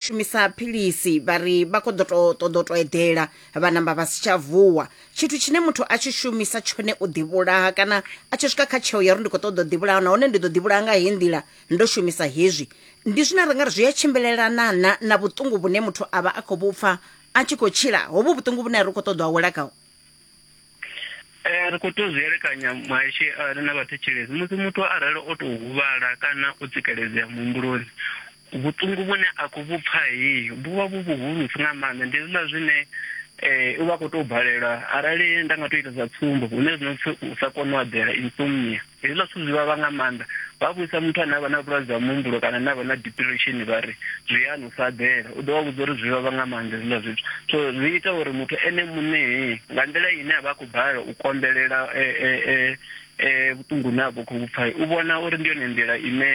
shumisa philisi vha ri vha khou ḓo to- ṱoḓa u to eḓela vha namba vha si tsha vuwa tshithu tshine muthu a tshi shumisa tshone u ḓivhulaha kana a tshi swika kha tsheo ya uri ndi khou ṱoḓa u ḓivhulaha nahone ndi ḓo ḓivhulaha nga heyi nḓila ndo shumisa hezwi ndi zwine ra nga ri zwi a tshimbilelana na na vhuṱungu vhune muthu a vha a khou vhupfa a tshi khou tshila hovhu vhuṱungu vhune a ri khou ṱoḓa u awela khaho Eh, ri khou tea u zwi elekanya muhashi eh, na vhathetshelesi musi muthu arali o tou huvhala kana o tsikeledzea muhumbuloni vhuṱungu vhune a khou vhu pfa heyi vhu vha vhu vhuhulusi nga maanḓa ndi hezwiḽa zwine um u vha khou tou balelwa arali nda nga tou ita sa tsumbo hune zwino pfi u sa kona u eḓela insomnia Hezwiḽa zwithu zwi vhavha nga maanḓa. Vha vhudzisa muthu ane a vha na vhulwadze ha muhumbulo kana ane a vha na diphiresheni vha ri, Zwi a ni sa ḓela. U ḓo vha vhudza uri zwi vhavha nga maanḓa hezwiḽa zwithu. So zwi ita uri muthu ene muṋe nga nḓila ine a vha a khou balelwa u konḓelela vhuṱungu hune a vha khou vhu pfa, u vhona uri ndi yone nḓila ine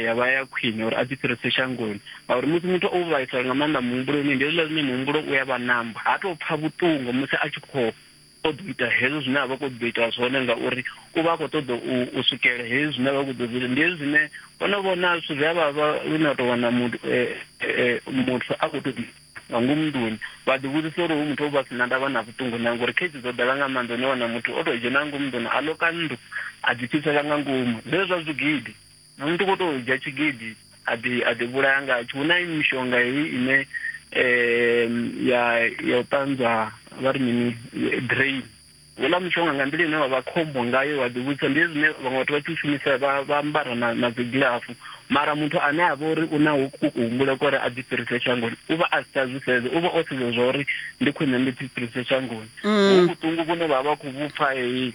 ya vha ya khwine uri a ḓi fhirise shangoni. Ngauri musi muthu o vhaisala nga maanḓa muhumbuloni ndi hezwiḽa zwine muhumbulo u ya vha namba, ha tou pfa vhuṱungu musi a tshi khou o ḓo ita hezwo zwine a vha khou ḓo ita zwone ngauri u vha a khou ṱoḓa u swikela hezwi zwine a vha khou ḓo zwi ndi hezwi zwine o no vhona zwithu zwi a vhavha lune a tou wana muthu eh, eh, muthu a khou tou nga ngomu nḓuni vha ḓi vhudzisa uri hu muthu o vha si na ndavha na vhuṱungu na ngori khezi dzo ḓala nga maanḓa une wana muthu o tou dzhena nga ngomu nḓuni a loka nnḓu a ḓipfhisela nga ngomu zwezwo zwa zwigidi Muṅwe muthu u khou tou dzhia tshigidi a ḓi a ḓi vhulaya ngatsho. Hu na mishonga heyi ine ya ya u ṱanzwa vha ri mini drain. Houḽa mushonga nga nḓila ine wa vha khombo ngayo wa ḓi vhudzisa ndi zwine vhaṅwe vhathu vha tshi u shumisa vha vha ambara na na dzi gilafu mara muthu ane a vha uri u na u kuhumbula kwa uri a ḓi fhirise shangoni u vha a si tsha zwi sedza u vha o sedza zwa uri ndi khwine ndi ḓi fhirise shangoni hu vhuṱungu vhune vha vha khou vhupfa heyi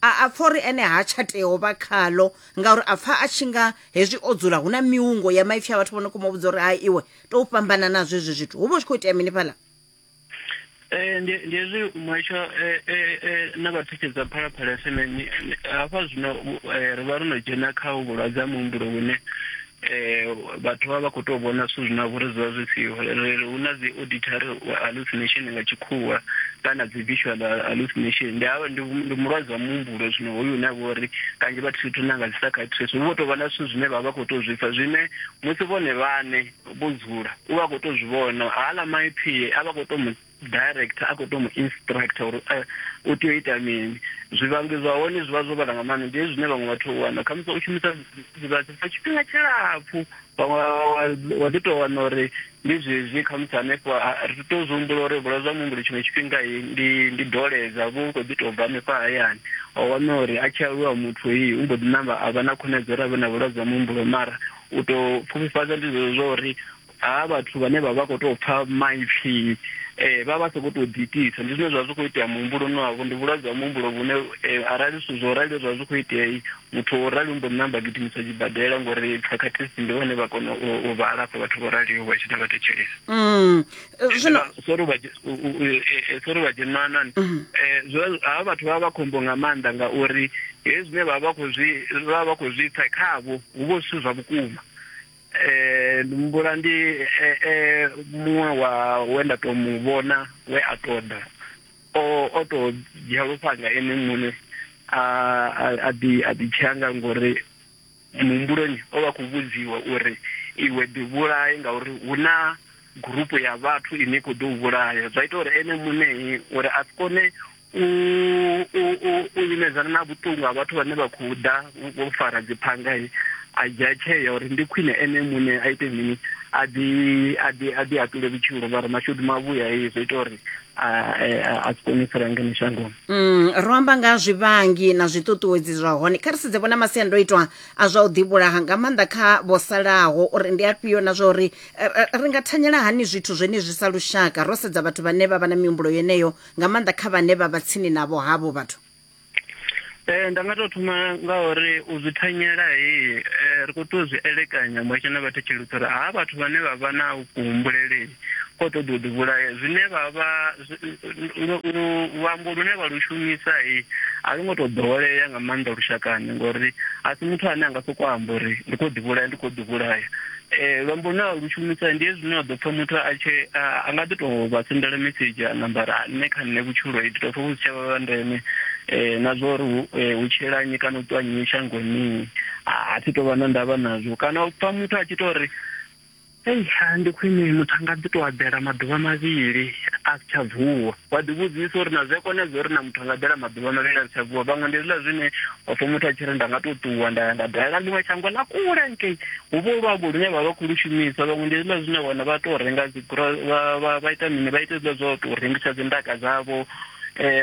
a a pfa uri ene ha tsha tea u vha khaḽo ngauri a pfa a tshi nga hezwi o dzula hu na miungo ya maipfi a vhathu vho no khou mu vhudza uri hai iwe tou fhambana nazwo hezwi zwithu hu vha hu tshi khou itea mini fhaḽa Eh, ndi ndi hezwi muhasho eh, eh, eh, na vhathetshedza phalaphala fm ni- ni- hafha zwino eh, ri vha ro no dzhena kha vhulwadze ha muhumbulo vhune um vhathu vha vha khou tou vhona zwithu zwine vho ri zwi vha zwi siho hu na dzi auditory hallucination nga tshikhuwa kana dzi visual hallucination ndi havha ndi mulwadze wa muhumbulo zwino hoyu une avha uri kanzhi vha thithu na nga dzi psychiatrist vho tou vha na zwithu zwine vha vha khou tou zwi pfa zwine musi vhone vhane vho dzula u vha khou tou zwi vhona hala maipfhi a vha khou tou director a khou to mu instructor uri eh, u tea u ita mini zwivhangi zwa hone zwi vha zwo vhala nga maanḓa ndi hezwi zwine vhaṅwe vhathu wana khamusi u shumisa zwidzidzivhadzi for tshifhinga tshilapfu vhaṅwe wa ḓi tou wana uri ndi zwezwi khamusi hanefho ri tou zwi humbula uri vhulwadze ha muhumbulo tshiṅwe tshifhinga ndi ndi doledza vhu khou ḓi tou bva hanefha hayani o wana uri a tshi aluwa muthu iyi u mbo ḓi namba a vha na khonadzeo uri a vhe na vhulwadze ha muhumbulo mara u tou pfufhifhadza ndi zwezwo zwa uri ha vhathu vhane vha vha khou tou pfa maipfi eh, vha vha sa khou tou ḓiitisa ndi zwine zwa zwi khou itea muhumbuloni wavho ndi vhulwadze ha muhumbulo vhune eh, arali zwithu zwo rali zwa zwi khou itea muthu o rali mbo namba gidimiswa tshibadela ngori practice ndi vhone vha kona u vha alafha vhathu vho raliho vha tshi ḓa vha thetshelesa mm. eh, sori vha eh, dzhenanani mm-hmm. ha vhathu vha vha khombo nga maanḓa ngauri hezwi zwine vha vha khou zwi vha vha khou zwi pfa khavho hu vho zwithu zwa vhukuma eh, ndi humbula ndi eh, eh, muṅwe wa we nda tou mu vhona we a tou ḓa o o tou dzhia lufhanga ene muṋe a a- a ḓi a ḓi tshea nga ngori muhumbuloni o vha khou vhudziwa uri iwe ḓi vhulaye ngauri hu na gurupu ya vhathu ine i khou ḓo u vhulaya zwa ita uri ene muṋei uri a si kone u u u u imedzana na vhuṱungu ha vhathu vhane vha khou ḓa vho fara dziphanga a dzhia tsheo uri ndi khwine ene muṋe a ite mini a ḓi a ḓi a ḓi atule vhutshilo vha ri mashudu mavhuya hei zwo ita uri a a si kone u fara ngeno shangoni mm, ro amba nga zwivhangi na zwiṱuṱuwedzi zwa hone kha ri sedze vhona masiandoitwa a zwa u ḓivhulaha nga maanḓa kha vho salaho uri ndi afhio na zwa uri ri nga thanyela hani zwithu zwenezwi sa lushaka ro sedza vhathu vhane vha vha na mihumbulo yeneyo nga maanḓa kha vhane vha vha tsini navho havho vhathu Eh nda nga to thoma nga uri u zwi thanyela he eh, ri kho to zwi elekanya mwatshe na vhathu tshilutsa uri ha vhathu vhane vha vha na kuhumbulele ko to ḓo ḓi vhulaya zwine vha vha luambo lune vha lu shumisa he a lu ngo to ḓowelea nga maanḓa lushakani ngori a si muthu ane a nga soko amba uri ndi kho ḓi vhulaya ndi kho ḓi vhulaya Eh, luambo na lu shumisa ndi hezwi no ḓo pfha muthu a tshe a nga ḓi tou vha sendela message a nambara nṋe kha nṋe vhutshilo i ḓo pfha vhu si tsha vha ndeme eh, na zwa uri eh, hu tshila nnyi kana u ṱwa nnyi shangoni mini a thi tou vha na ndavha nazwo kana u pfha muthu a tshi tou ri ei ndi khwine muthu a nga ḓi tou abela maḓuvha mavhili a si tsha vuwa wa ḓivhudzisa uri na zwi a konedza uri na muthu a nga ḓela maḓuvha mavhili a sa vuwa vhaṅwe ndi hezwiḽa zwine wa pfha muthu a tshi ri nda nga tou ṱuwa nda ya nda dalela ḽiṅwe shango ḽa kule nkei hu vho luambo lune vha vha khou lu shumisa vhaṅwe ndi hezwiḽa zwine wana vha tou renga dzi vha ita mini vha ita hezwiḽa zwa u tou rengisa dzi ndaka dzavho um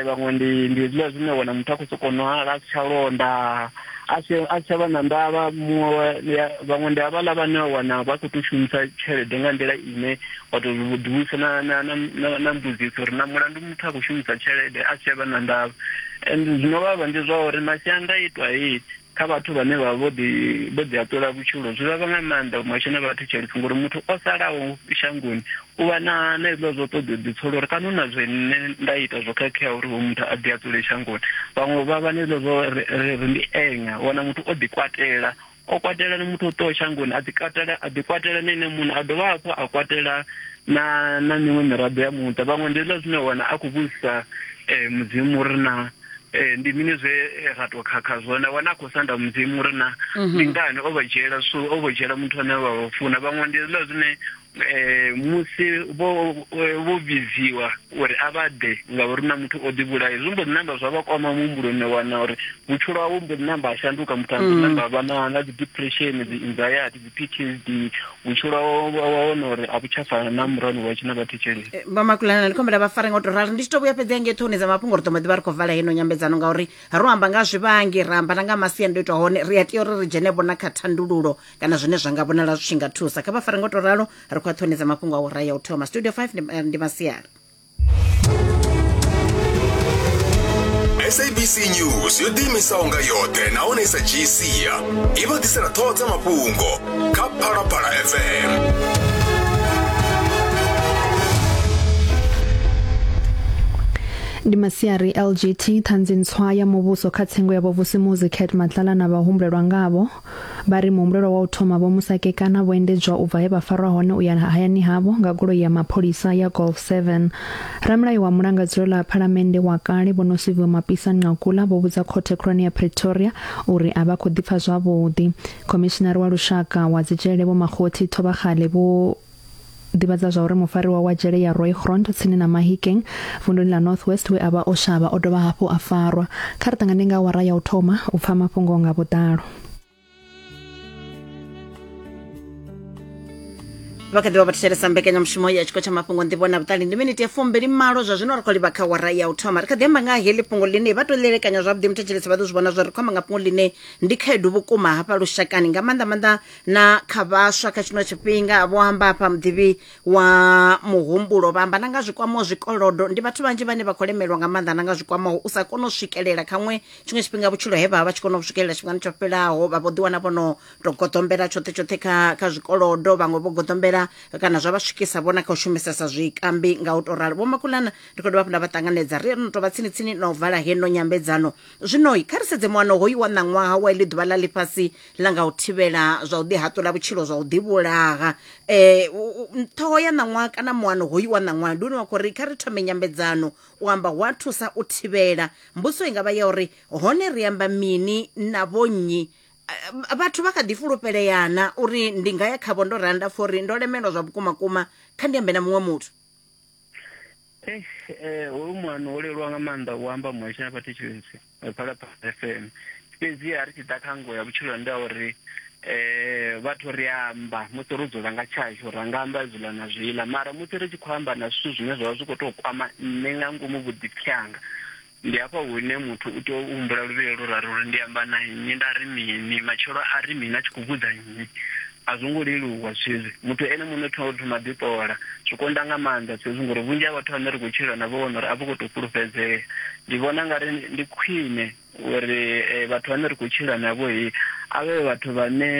vhaṅwe ndi ndi hezwiḽa zwine wana muthu a khou sokou nwala a si tsha londa a si a tsha vha na ndavha muṅwe vhaṅwe ndi havhaḽa vhane wa wana vha khou tou shumisa tshelede nga nḓila ine wa tou ḓivhusa na na na na mbudziso uri na mulandu muthu a khou shumisa tshelede a si tsha vha na ndavha and zwino vhavha ndi zwa uri masiandaitwa hei kha vhathu vhane vha vho ḓi vho ḓi aṱula vhutshilo zwi vhavha nga maanḓa vhumatshelo vhathu tshelede ngori muthu o salaho shangoni U vha na na hezwiḽa zwa u ṱoḓa u ḓipsola uri kana hu na zwe nṋe nda ita zwo khakheaho uri hoyu muthu a ḓi a dzule shangoni vhaṅwe vha vha na hezwiḽa zwa ri ri ri ndi enya u wana muthu o ḓi kwatela o kwatela na muthu o ṱoho shangoni a ḓi katela a ḓi kwatela na ene muṋe a dovha hafhu a kwatela na na miṅwe miraḓo ya muṱa vhaṅwe ndi hezwiḽa zwine wana a khou vhudzisa um mudzimu uri na Eh, ndi mini zwe eh, ra to khakha zwone wana a khou sanda mudzimu uri na mhm. ndi ngani o vha dzhiela so o vha dzhiela muthu ane vha vha funa vhaṅwe ndi hezwiḽa zwine Eh, musi vho eh, vho vhidziwa uri a vha ḓe ngauri na muthu o ḓivhulaye zwi mbo ḓi namba zwa vha kwama muhumbuloni wa wana uri vhutshilo hawe mbo ḓi namba a shanduka muthu a mbo ḓi mm. namba a vha na na dzi-depression dzi-anxiety dzi-ptsd vhutshilo wa wana uri a vhu tsha fana na murano wa tshina vhathu tsheleni eh, vha makulana ndi khombela vha fare nga u to rali ndi tshi to vhuya fhedzi hange ṱhoni dza mafhungo ri ḓo mbo ḓi vha ri khou vala heno nyambedzano ngauri ro amba nga zwivhangi ra amba na nga masiandoitwa hone ri a tea uri ri dzhene vhona kha thandululo kana zwine zwa nga vhonala zwi tshi nga thusa kha vha fare ngo to ralo ri khou a ṱhonedza mafhungo a u raya u thoma studio 5 ndi, eh, ndi masiari sabc news yo ḓiimisaho nga yoṱhe nahone i sa dzhii sia i vha ḓisela ṱhoho dza mafhungo kha phalaphala fm ndi masiari lgt ṱhanzi ntswa ya muvhuso kha tsengo ya vhovusimuzi cat matlala na vhahumbulelwa ngavho Vha ri muhumbulelwa wa u thoma vho Musakekana vho endedzwa u bva he vha farwa hone u ya hayani havho nga goloi ya mapholisa ya Golf 7. Ramulayo wa mulangadzulo ḽa phalamennde wa kale vho Nosiviwe Mapisa Nqakula vho vhudza khothe khulwane ya Pretoria uri a vha khou ḓipfa zwavhuḓi. Khomishinari wa lushaka wa dzijele vho Makgothi Thobakgale vho ḓivhadza zwa uri mufariwa wa dzhele ya Rooigrond tsini na Mahikeng vunduni ḽa North West we a vha o shavha o dovha hafhu a farwa. Kha ri ṱangane nga awara ya u thoma u pfa mafhungo nga vhuḓalo. vha kha ḓi vha vha thetshelesa mbekanyamushumo ya tshiko tsha mafhungo nḓivho na vhuṱali ndi miniti ya fumbili malo zwa zwino ri khou livha kha wara ya u thoma ri kha ḓi amba nga heḽi fhungo ḽine vha tou ḽelekanya zwavhuḓi muthetshelesi vha ḓo zwi vhona zwa ri khou amba nga fhungo ḽine ndi khaedu vhukuma hafha lushakani nga maanḓa maanḓa na kha vhaswa kha tshino tshifhinga vho amba hafha muḓivhi wa muhumbulo vha amba na nga zwikwamaho zwikolodo ndi vhathu vhanzhi vhane vha khou lemelwa nga maanḓa na nga zwikwamaho u sa kona u swikelela khaṅwe tshiṅwe tshifhinga vhutshilo he vha vha tshi kona u swikelela tshifhingani tsho fhelaho vha vho ḓiwana vho no to goḓombela tshoṱhe tshoṱhe kha kha zwikolodo vhaṅwe vho goḓombela kana zwa vha swikisa vhona kha u shumisesa zwikambi nga u to ralo vho makulana ndi khou dovha hafhu nda vha ṱanganedza ri no tovha tsini tsini na u vala heno nyambedzano zwino kha ri sedze muano hoyu wa ṋaṅwaha wa iḽi ḓuvha ḽa ḽifhasi ḽa nga u thivhela zwa u ḓihaṱula vhutshilo zwa u ḓivhulaha um ṱhoho ya ṋaṅwaha kana muano hoyu wa ṋaṅwaha ndi une wa khou ri kha ri thome nyambedzano u amba hu a thusa u thivhela mbudziso i nga vha ya uri hone ri amba mini na vhonnyi vhathu vha kha ḓi fulufheleana uri ndi nga ya khavho ndo randa pfha uri ndo lemelwa zwa vhukuma kuma kha ndi ambe na muṅwe muthu Eh, eh, hoyu muano wo leluwa nga maanḓa u amba muhasho na vhathetshelesi eh, phalaphala fm fhedzi a ri tshi ḓa kha ngo ya vhutshilo ndi a uri um vhathu ri amba musi ro dzula nga tshashu ra nga amba zwiḽa na zwiḽa mara musi ri tshi khou amba na zwithu zwine zwa vha zwi khou tou kwama nṋe nga ngomu vhuḓipfi hanga Ndi hafha hune muthu u tea u humbula luvhilo lu rali uri ndi amba na nnyi, nda ri mini, matshelo a ri mini, a tshi khou vhudza nnyi. A zwo ngo leluwa zwithu hezwi. Muthu ene muṋe u tea u thoma a ḓiṱola. Zwi konḓa nga maanḓa zwithu hezwi ngori vhunzhi ha vhathu vhane ri khou tshila navho vha wana uri a vho ngo tou fhulufhedzea. Ndi vhona u nga ri ndi khwine uri vhathu vhane ri khou tshila navho a vhe vhathu vhane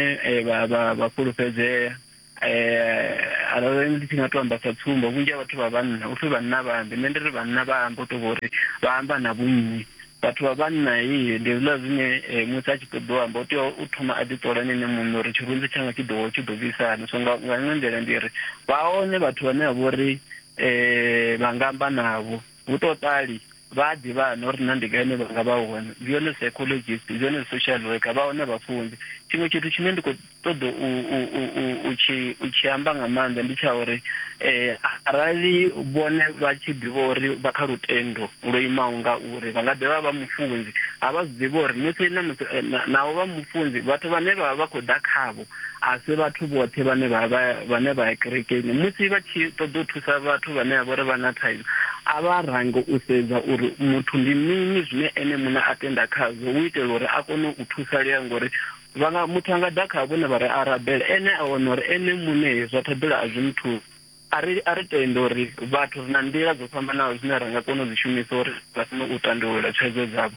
vha fhulufhedzea. eh arali ndi tshi nga to amba sa tsumbo vhunzhi ha vhathu vha vhanna upfhi vhanna vha ambe nṋe ndi ri vhanna vha ambe u to vhori vha amba na vhunnyi vhathu vha vhanna i ndi zwiḽa zwine eh, musi a tshi ṱoḓa u amba u tea u thoma a ḓi ṱola nene muṋe uri tshirunzi tshanga tshi ḓo tshi ḓo bvisana so nga nga iṅwe nḓila ndi ri vha hone vhathu vhane vha vhori eh vha nga amba navho Hu tou ṱali, vha a ḓivha hani uri na ndi gai hune vha nga vha hone? Ndi hone psychologist, ndi hone social worker, vha hone vhafunzi. Tshiṅwe tshithu tshine ndi khou ṱoḓa u, u, u, u, u, tshi, u tshi amba nga maanḓa ndi tsha uri eh, arali vhone vha tshi ḓivha uri vha kha lutendo lwo imaho nga uri vha nga ḓi vha vha mufunzi, a vha zwi ḓivha uri musi na musi, eh, na, naho vha mufunzi vhathu vhane vha vha vha khou ḓa khavho a si vhathu vhoṱhe vhane vha vha vhane vha ya kerekeni musi vha tshi ṱoḓa u thusa vhathu vhane vha vhori vha na thaidzo a vha range u sedza uri muthu ndi mini zwine ene muṋe a tenda khazwo u itela uri a kone u thusalea ngori vhanga muthu anga ḓa kha vhone vha ri a rabela ene a wana uri ene muṋe zwa ṱhoḓela a zwi muthusi a ri a ri tende uri vhathu ri na nḓila dzo fhambanaho zwine ra nga kona u dzi shumisa uri vha kone u tandulula thaidzo dzavho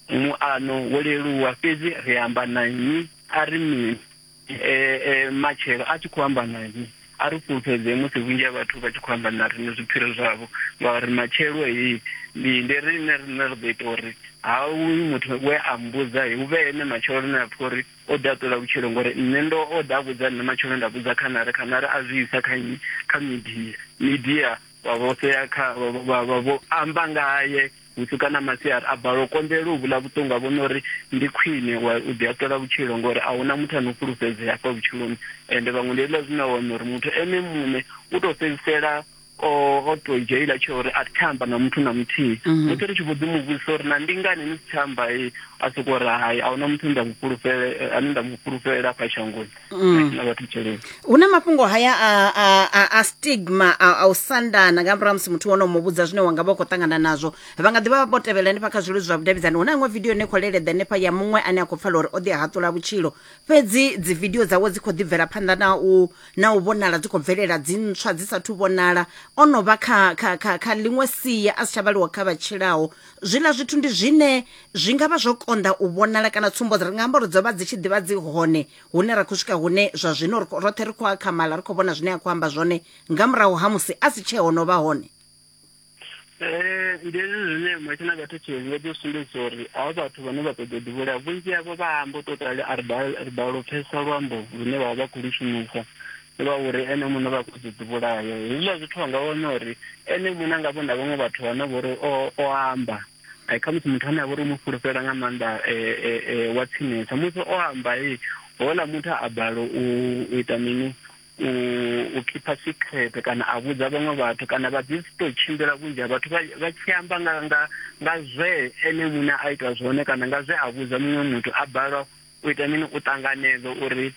muano wo leluwa fhedzi ri amba na nnyi a ri mini e, e, matshelo a tshi khou amba na nṋe a ri fhulufhedzee musi vhunzhi ha vhathu vha tshi khou amba na riṋe zwipfhiro zwavho ngauri matshelo heyi ndi ndi riṋe riṋe ri ḓo ita uri ha uyu muthu we a mbudza he hu vhe ene matshelo lune a pfha uri o ḓi a ṱola vhutshilo ngori nṋe ndo o ḓa a vhudza nṋe matshelo nda vhudza khanare khanare a zwi isa kha nnyi kha midia midia vha vho sea kha vha vho amba ngaye Vhusiku kana masiari a balelwa u konḓelela u vhula vhuṱungu, a vhona uri ndi khwine u u ḓihaṱula vhutshilo ngori a hu na muthu a no fhulufhedzea hafha vhutshiloni. Ende vhaṅwe ndi hezwiḽa zwine wa wana uri muthu ene muṋe u tou fhedzisela o o tou dzhia hetshiḽa tsheo uri a thi tsha amba na muthu na muthihi. Musi ri tshi vho ḓi mu vhudzisa uri na ndi ngani ni si tsha amba, a sokou ri hai a hu na muthu ane nda mu fhulufhele, ane nda mu fhulufhelela afha shangoni. Mm. na vhathu tshelede hu na mafhungo haya a, a, a, a stigma a, a u sandana nga murahu ha musi muthu wono mu vhudza zwine wanga vha u khou ṱangana nazwo vha nga ḓi vha vho tevhela hanefha kha zwiludzi zwa vhudavhidzani hu na iṅwe vidio ine khou leleḓa hanefha ya muṅwe ane a khou pfala uri o ḓi haṱula vhutshilo fhedzi dzi vidio dzawe dzi khou ḓi bvela phanḓa na u na u vhonala dzi khou bvelela dzi ntswa dzi sathu vhonala o no vha kha, kha, kha, kha ḽiṅwe sia a si tsha vhaliwa kha vha tshilaho Zwiḽa zwithu ndi zwine zwi nga vha zwo konḓa u vhonala kana tsumbo dzi re nga amba uri dzo vha dzi tshi ḓivha dzi hone hune ra khou swika hune zwa zwino roṱhe ri khou akhamala ri khou vhona zwine a khou amba zwone nga murahu ha musi a si tshee hono vha hone Eh, ndi hezwi zwine matshe na vhathetshelesi vha ḓo sumbedzisa uri avha vhathu vhane vha ṱoḓa u ḓivhulea vhunzhi havho vha amba u tou rali a ri bala ri bala u pfhesesa luambo lune vha vha vha khou lu shumisa Lwa uri ene muṋe vha khou ḓi ḓivhulaya. Hezwiḽa zwithu vha nga wana uri ene muṋe a nga vhona vhaṅwe vhathu vhane vha uri o o amba khamusi muthu ane a vha uri u mu fhulufhela nga maanḓa wa tsinesa musi o amba houḽa muthu a balelwa u ita mini u u khipha secret kana a vhudza vhaṅwe vhathu kana vha ḓi si tou tshimbila vhunzhi ha vhathu vha tshi amba nga nga nga zwe ene muṋe a ita zwone kana nga zwe a vhudza muṅwe muthu a balelwa U ita mini? U ṱanganedza uri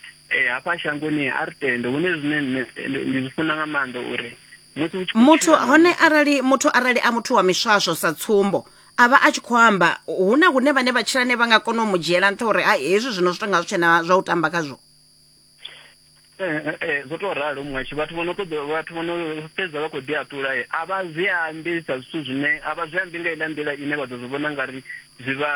hafha shangoni a ri tende. Hune zwine nṋe ndi zwi funa nga maanḓa uri musi u tshi muthu hone arali muthu arali a muthu wa miswaswo sa tsumbo a vha a tshi khou amba hu na hune vhane vha tshila ne vha nga kona u mu dzhiela nṱha uri hezwi zwino zwi tonga zwi tshena zwa u tamba khazwo Eh, eh, eh, zwo to ralo muṅwe tshi vhathu vhono ṱoḓa vhathu vhono fhedza vha khou ḓi aṱula a vha zwi ambi sa zwithu zwine a vha zwi ambi nga ila nḓila ine vha ḓo zwi vhona ngari zwi vha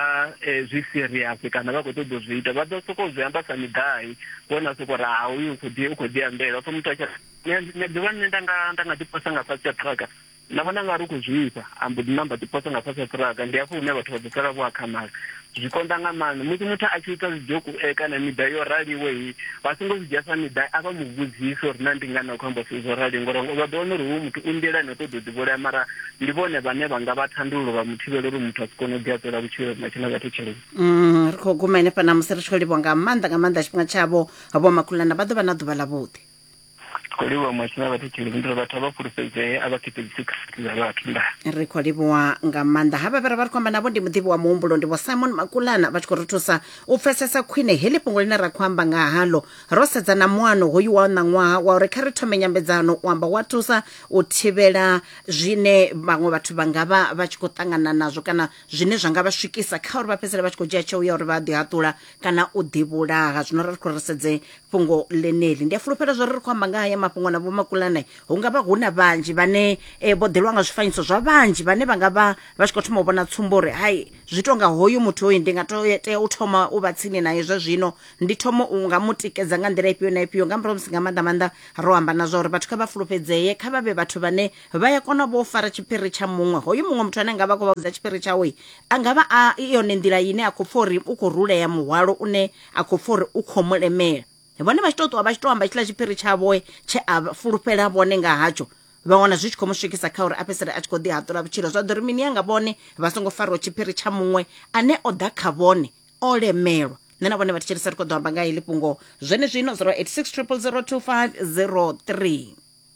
zwi serious kana vha khou ṱoḓa u zwi ita vha ḓo sokou zwi amba sa miḓai vhona sokou ri ha uyu u khou ḓi u khou ḓi ambela pfha muthu a tshi nṋe ḓuvha nṋe nda nga nda nga ḓi posa nga fhasi ya truck Nda vhona nga ri u khou zwifha, a mbo ḓi ṋamba a ḓiposa nga fhasi ha ṱhiraga. Ndi hafho hune vhathu vha ḓo sala vho akhamala. Zwi konḓa nga maanḓa. Musi muthu a tshi ita zwidzhoku e kana miḓai yo raliho he, vha songo zwi dzhia sa miḓai, a vha mu vhudzise uri naa ndi ngani a khou amba zwithu zwo raliho ngori vha ḓo wana uri hoyu muthu u nḓilani u ṱoḓa u ḓivhulaya mara ndi vhone vhane vha nga vha thandululo vha mu thivhela uri muthu a si kone u ḓi haṱula vhutshilo na tshine vha thetsheleni. Mm, ri khou guma henefha ṋamusi ri tshi khou livhuwa nga maanḓa nga maanḓa tshifhinga tshavho. Vho Makhulana vha ḓo vha na ḓuvha ḽavhuḓi. khou livhuwa muhasho na vhathetsheleli ndi uri vhathu a vha fhulufhedzee a vha khethedzisi khasithi dza vhathu nda ri khou livhuwa nga maanḓa havha vhe ra vha ri khou amba navho ndi muḓivhi wa muhumbulo ndi vho simon makulana vha tshi khou ri thusa u pfesesa khwine heḽi fhungo ḽine ra khou amba nga haḽo ro sedza na muano hoyu wa ṋaṅwaha wa uri kha ri thome nyambedzano u amba wa thusa u thivhela zwine vhaṅwe vhathu vha nga vha vha tshi khou ṱangana nazwo kana zwine zwa nga vha swikisa kha uri vha fhedzisele vha tshi khou dzhia tsheo ya uri vha ḓi haṱula kana u ḓivhulaha zwino ri khou ri sedze fhungo ḽeneḽi ndi a fulufhela zwo ri ri khou amba nga haya mafhungo na vhomakulane hu nga vha hu na vhanzhi vhane eh, vho ḓelwa nga zwifanyiso zwa vhanzhi vhane vha nga vha vha tshi khou thoma u vhona tsumbo uri hai zwi tonga hoyu muthu hoyu ndi nga to tea u thoma u vha tsini naye zwa zwino ndi thoma u nga mu tikedza nga nḓila ifhio na ifhio nga murahu musi nga maanḓa maanḓa ro amba na zwa uri vhathu kha vha fulufhedzee kha vha vhe vhathu vhane vha ya kona vho fara tshiphiri tsha muṅwe hoyu muṅwe muthu ane nga vha khou vha vhudza tshiphiri tshawe a nga vha a i yone nḓila ine a khou pfa uri u khou rulea muhwalo une a khou pfa uri u khou mu lemela vhone vha tshi tou ṱuwa vha tshi tou amba tshiḽa tshiphiri tshavhoe tshe a fulufhela vhone nga hatsho vha wana zwi tshi khou mu swikisa kha uri a fhedzisele a tshi khou ḓi haṱula vhutshilo zwa ḓo ri mini yanga vhone vha songo fariwa tshiphiri tsha muṅwe ane o ḓa kha vhone o lemelwa nṋe na vhone vha thetshelesa ri khou ḓo amba nga heḽi fhungo zwenezwino 086 000 2503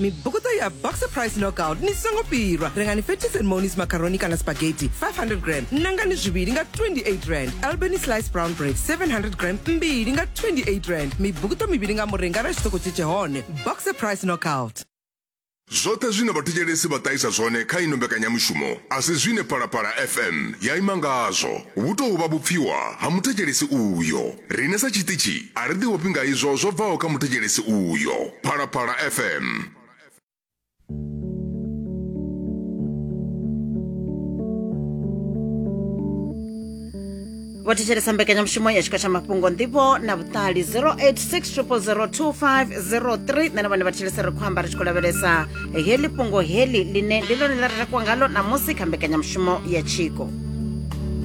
mibvukuto ya boxer price knockout ni songo pirwa rengani fetis and monis macaroni kana spaghetti 500 gram nangani zviviri nga 28 rand albany slice brown bread 700 gram mbiri nga 28 rand mibvukuto miviri nga murenga ra xitoko cecehone boxer price knockout zwoṱhe zwine vhathetshelesi vha ṱahisa zwone kha ino mbekanyamushumo a si zwine phalaphala fm ya ima ngazwo Vhu tou vha vhupfiwa ha muthetshelesi uyo. Riṋe sa tshiṱitshi a ri ḓiofhi nga izwo zwo bvaho kha muthetshelesi uyo. Phalaphala FM. vho thetshelesa mbekanyamushumo ya tshiko tsha mafhungo nḓivho na vhuṱali 0860002503 nṋe na vhone vha thetshelesa ri khou amba ri tshi khou lavhelesa heḽi fhungo heḽi ḽine ndi ḽone ḽa ri takuwa ngalo ṋamusi kha mbekanyamushumo ya tshiko